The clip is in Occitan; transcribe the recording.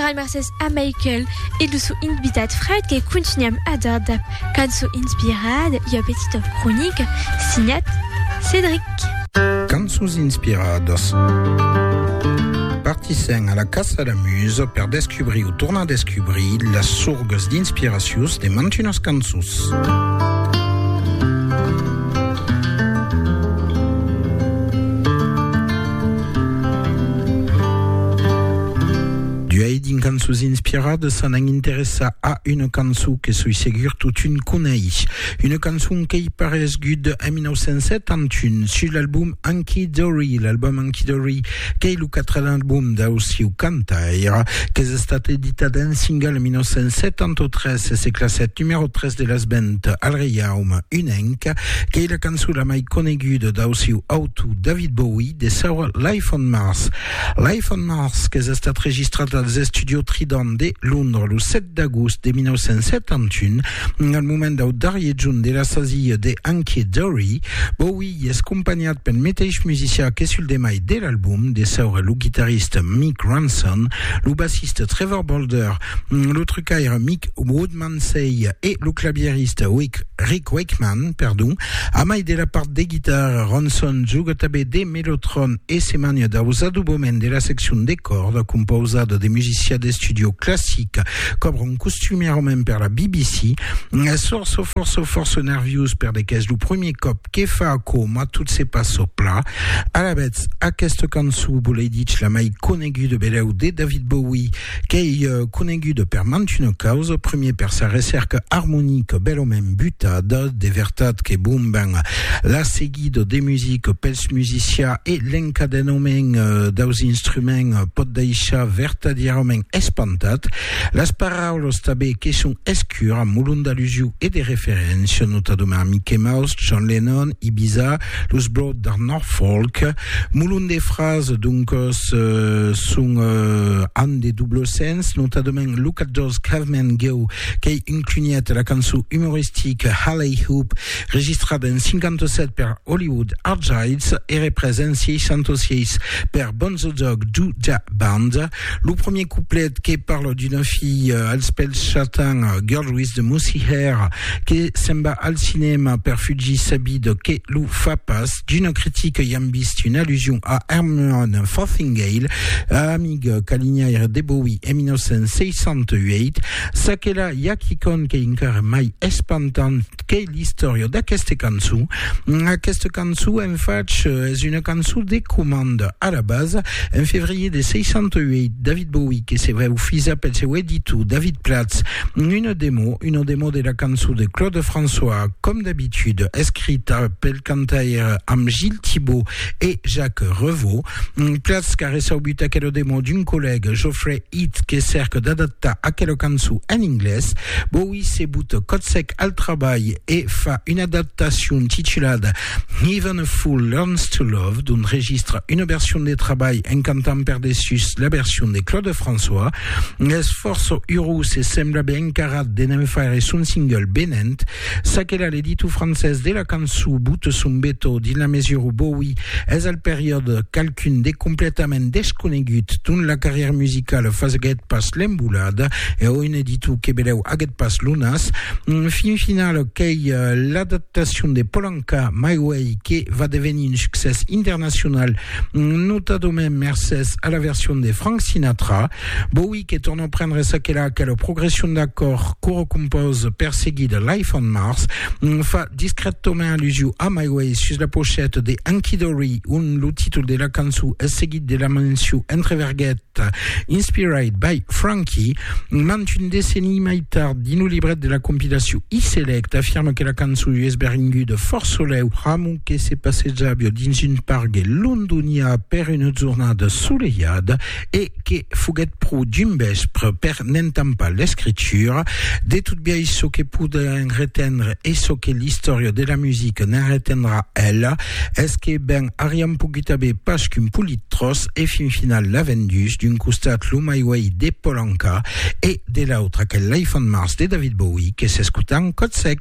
Rai mercés a Michael e lo sò invitat Fred que contunham a dar dab cançon inspirada ua petita cronica signat Cedric. Cançons inspiradas. Partissèm a la caça la musa per descubrir o tornar descubrir las sorgas d'inspiracions de mantunas cançons. D'uèi dins cançons inspiradas s'anam interessar a una cançon que soi segur totun coneis. Una cançon qu'ei paresgut en 1971 sus l'album Hunky Dory, l'album Hunky Dory qu'ei lo quatren album dau sieu cantaire, qu'es estat editat en single en 1973 e se classèt numèro 3 de las ventes al Reiaume Unenc, qu'ei la cançon la mai coneguda dau sieu autor. to David Bowie de saur Life on Mars. Life on Mars qu'es estat registrat als Estudio Trident de Londres lo 7 d'agost de 1971, al moment dau darrier junt de la sasilha de Hunky Dory. Bowie es companhat pel meteis musicià que sul demai de l'album, de saur lo guitarrista Mick Ronson, lo bassista Trevor Bolder, lo trucaire Mick Woodman, Lindsay e lo clavierista Rick Wakeman, perdon, a mai de la part de guitarra, Ronson juga tanben de mellotron e se mania daus adobaments de la seccion de còrda compausada de musicià d'estudio classic qu'obron costumièrament per la BBC. Sorço, forço, forço nerviós per de qu'es lo premier còp que fa aquò, mas tot se passa pla. Alavetz, aquesta cançon, volei dich la mai coneguda beleu de David Bowie, Qu'ei conenguda per mantuna causa, primier per sa recèrca armonica bèlament butada, de vertat que bon ben la seguida de musica pels musicians e l'encadenament daus instruments pòt daishar vertadièrament espantat, las paraulas tanben que son escuras, molon d'alusiu e de referéncia, notadament Mickey Mouse, John Lennon, Ibiza, Los Broad de Norfolk, molon de frases, doncos, son an de doble sens, notadament lo 14 Caveman Go, qu'ei un cunhet la cançon umoristica Halley Hoop, registrada en 57 per Hollywood Argyles e represa en 66 per Bonzo Dog Do Da Band, Lo premier couplet que parle d'una fille euh, als pèls chatins, euh, girl with the mousy hair, que se'n va al cinema per fugir sa vida que lo fa pas. D'una critica i am vist una allusion a Herman Fothingale, amic calinhaire de Bowie en 1968. Çaquelà, i a quicòm qu'ei encara mai espantant, Qu'est-ce qu'est l'istòria d'aqueste cançon? Aquesta cançon, en fach, es una cançon de comanda. A la basa, en fevrier de 68, David Bowie que se veu fisa pel seu editor David Platz una demo, una demo de la cançon de Claude François, com d'habitude, escrita pel cantaire amb Gilles Thibaud e Jacques Revaux. Platz qu'a reçaubut aquela demo d'un collègue, Geoffrey It que cèrque d'adaptar aquela cançon en inglés, Bowie se bota còth sec al trabalh e fa una adaptacion titulada Even a Fool Learns to Love, d'ont registra una version de trabalh en cantant per dessús la version de Claude François. Es fòrça urós e sembla ben encarat de ne'n faire son single venent Çaquelà l'editor francés de la cançon Boute son Beto dins la mesura où Bowie es al periòde qualqu'un de completament desconegut dont la carrièra musicala faguèt pas l'embolada e ò un editor que belèu aguèt pas lo nas fin final qu'ei l'adaptacion de Polanka My Way que va devenir un succès internacional notadament mercés a la version de Frank Sinatra Bowie que tornant prendre sa que la que la progression d'accord coro compose perseguit de Life on Mars fa discretament allusion a My Way sus la pochette de Anki Dory un lo títol de la cançon es seguit de la mention entre verguet Inspired by Frankie mant un decenni mai tard dins lo libret de la compilation E-Select afirme que la cançon US beringu de fort soleu pramo que se passejava dins un pargue londonià per una jornada soleiada e que foguèt pro dimbèspr per n'entampar l'escritura de tot biais çò que podèm retendre e çò que l'istòria de la musica ne'n retendrà ela es que ben ariam pogut aver pas qu'un polit tròç e fin final l'avèm dus, d'un costat lo My Way de Paul Anka e de l'autre aquel Life on Mars de David Bowie que s'escota en còth sec.